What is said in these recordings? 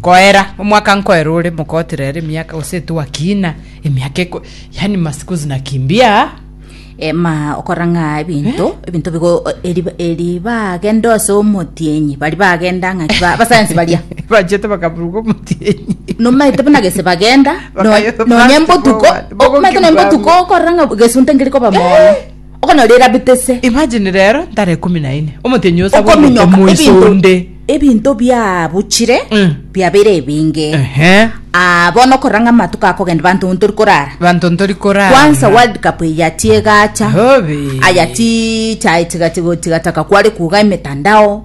koera omwaka nkoera ore mokotira ere emiaka gose etwakina emiaka eko yani masiku zinakimbia Eh, ma okora ng'a ebinto ebinto bigo eri eri bagende ase omotienyi bari bagenda ng'a ba- abasayansi baria bachete bakaburuka omotienyi nomaete buna gese bagenda no- Bakayo- nonye mbotuko plastic omaete nonye bogoki mbotuko okorora ng'a gesunte ngerikoba mono okonyorire Rabi tese. Imagine rero ntare ikomi na ine omotienyi ose abwate Okominyoka, omoiso ebinto- onde ebinto biabuchire Mm. biabeire ebinge Ehe. Ah, bono okorora ng'a amatuko akogenda banto ntori korara banto ntori korara kwansa world cup eya tiegacha Hobe. aya ti chae tiga tigo tigataka kware kuga emetandao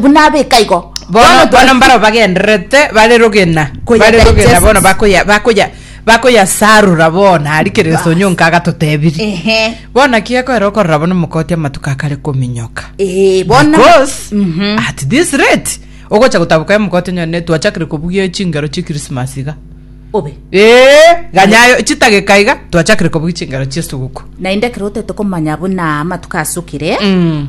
buna abeka igo. Bono, bono mbaro bagendererete bare rogena, bare rogena bono bakoya bakoya bakoyasarura bono ari kereso nyonka agatotebirie bono naki gekoera okorora bono mokoti amatuko akare kominyoka eh, bono because mm -hmm. at this rate ogocha gotabuka ya mokoti nyone twachakire kobugia chingero chi christmas iga obe eh ganyayo chitage kaiga twachakire kobugia chingero chi suguko nainde kerote tokomanya buna amatuko asukire mm.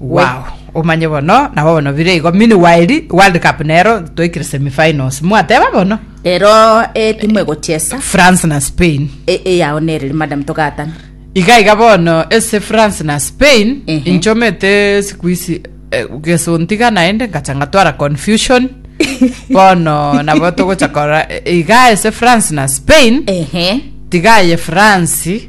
Wow, omanye bono nabo bono bire igo meanwhile World Cup nero toikire semifinals mwateba bono rero etimu egochesa France na Spain e- eyao nereri madam togatana iga iga bono ese France na Spain Ehe. inchomete siku isi eh, gesontiga naende ngacha ngatwara confusion bono nabo togocha kora eh, iga ese France na Spain ehe tiga aye France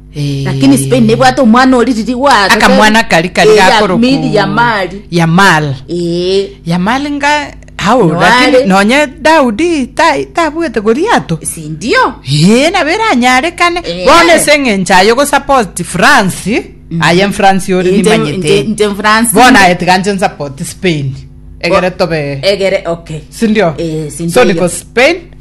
Lakini Spain nebwate omwana ori riri gwaro. akamwana kari kari Eh, ya- gakoroku mili ya mali. yamal Eh, yamal nga hao Noare. lakini nonye daudi ta- tabwete goliato si ndio? ee nabo eranyarekane Eh. bono ase eng'encho aye gosapoti france aye france ore Nche- nimanyete nche- nche France. bono aye tiga nche nsapoti spain egere tobe Egere okay. sindio Eh, si ndio so hiyo. niko spain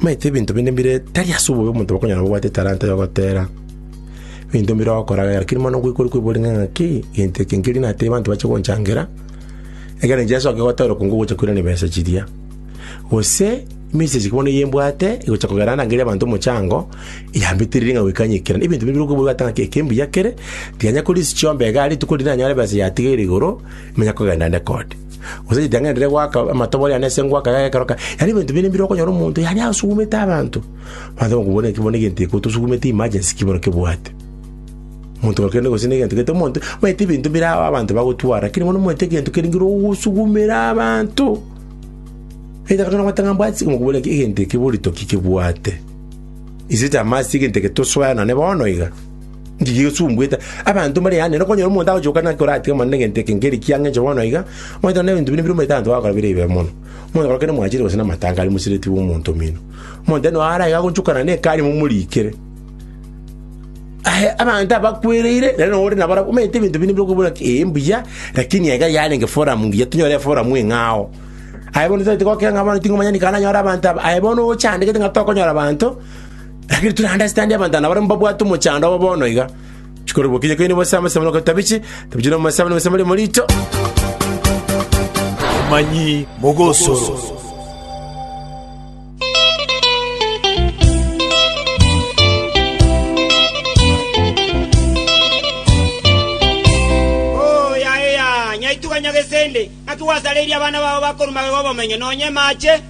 Maete ebinto binde mbire tari ase obobe omonto bakonyora bobwate etalanta y'ogotera ebinto mbire ogokoragera, lakini mono ngoikwa ore kwebori ng'a ng'aki egento eke nkerio natebie abanto bache gonchangera, ekero inche nsoke gotera okong'u ogocha koirana ebesa chiria. Gose emesegi eke bono eye mbwate egocha kogera ande ngerie abanto omochango, yambetereiri ng'a goika ng'ikere. Na ebinto binde mbire okweboria goteba ng'a eke mbuya kere, tiga nyakorisia chiombe igaa rituko riria nanyore ebesa yatigeire igoro, ninyakogenda nde kode. Gose ritang'ani riria rigoaka amatobo riane ase engwaka yaye ekero kare, yaani ebinto binde mbire okonyora omonto yaani asugumete abanto. Abanto bakoigwa bono ekero bono egento eke otosugumete emergency ki bono kebwate. Omonto ore kende gose na egento gete omonto, omanyete ebinto bire ao abanto bagotwara, lakini bono omanyete egento kere ngira ogosugumera abanto. Either kare nabwate ng'a mbwati okoigwa bono egento eke boritoki kebwate. Is it a must egento eke tosoe nane bono iga? Njige esumbuete abanto mbare yane, nokonyora omonto agochoka naki oratige mono negento eke nkeri ki ang'encho bono iga, omanyete onde ebinto binde bire omanyete abanto bagokora bire ebibe mono. Omonto gokora kende mwachire gose namatanga aria mosireti bw'omonto omino. Omonto ere no ara iga agonchokana nekari momorikere. Aye abanto abakwereire nere no ore nabarabwo omanyete ebinto binde bire okobuna ki ee mbuya lakini iga yarenge forum ngiya tonyore eforum eng'ao. Aye bono tabati gokira ng'a bono ting'omanya nikare nanyore abanto aba, aye bono ochandegete ng'a tokonyora abanto, Lakini tore naende asitandie abanto aba nabarabwo mbabwate omochando obo bono iga, chikorokigwa okinyie koine bose amasemo na okotabichi, tabichi na omosabe na omosabe riamo riicho. Omomanyi mogosoro. Oo yaya, nyaituga Nyagesende, naki gwasareirie abana bao bakorwa magega 'obomenyo, nonya emaache?